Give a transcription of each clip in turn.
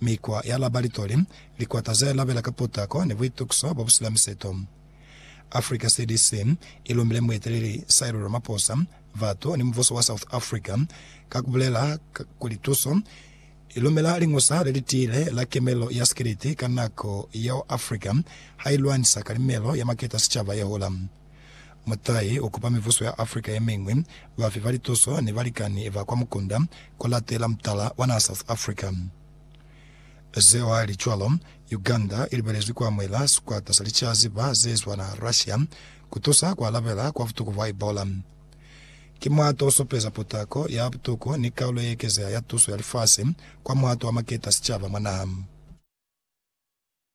Mikwa ya labalitoli, likwata ze labela ka potako ni buitukiso bo bu sina miseto. Africa CDC i lumile mueteleli Cyril Ramaphosa, batu ni mubuso wa South Africa ka ku bulela kuli tuso i lumela liñusa le li tiile la kemelo ya sikiliti ka nako yeo Africa ha i lwanisa kalimelo ya maketa a sicaba ye hula. Mutahi ukupa mibuso ya Africa yemiñwi bafi ba lituso ni balikani ba kwa mukunda kulatela mutala wa naha South Africa. Zeo hali cwalo, Uganda ilibelezwi kuamuhela sikwata sa licaziba zeezwa naha Russia kutusa kualabela kwa butuku bwa Ebola. Ki muhato osupeza putako ya butuku ni kaulo yeekezeha ya tuso ya lifasi kwa muhato wa maketa a sicaba mwa naha.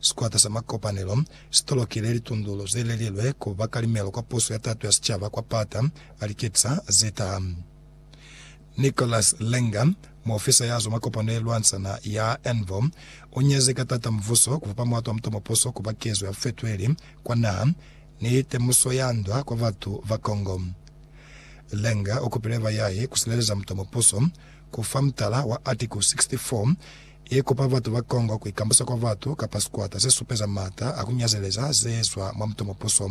Sikwata sa makopanelo si tolokile litundulo ze lelilwe ku ba kalimelo kwa puso ya tato ya sicaba kwa pata a liketisa ze taha. Nicholas Langer, muofisa ya zwa makopano ye lwantsana ya NVO, u nyezi ka tata muvuso ku fapa muato wa mutomo puso ku ba kezo ya fetweli kwa naha ni temuso ya ndwa kwa batu ba Congo. Langer u kupile bayahi ku sileleza mutomo puso ku fa mutala wa Article 64 I kupa batu ba Congo ku ikambusa kwa batu kapa sikwata se supeza m'ata a ku nyazeleza ze zwa mwa mutomopuso.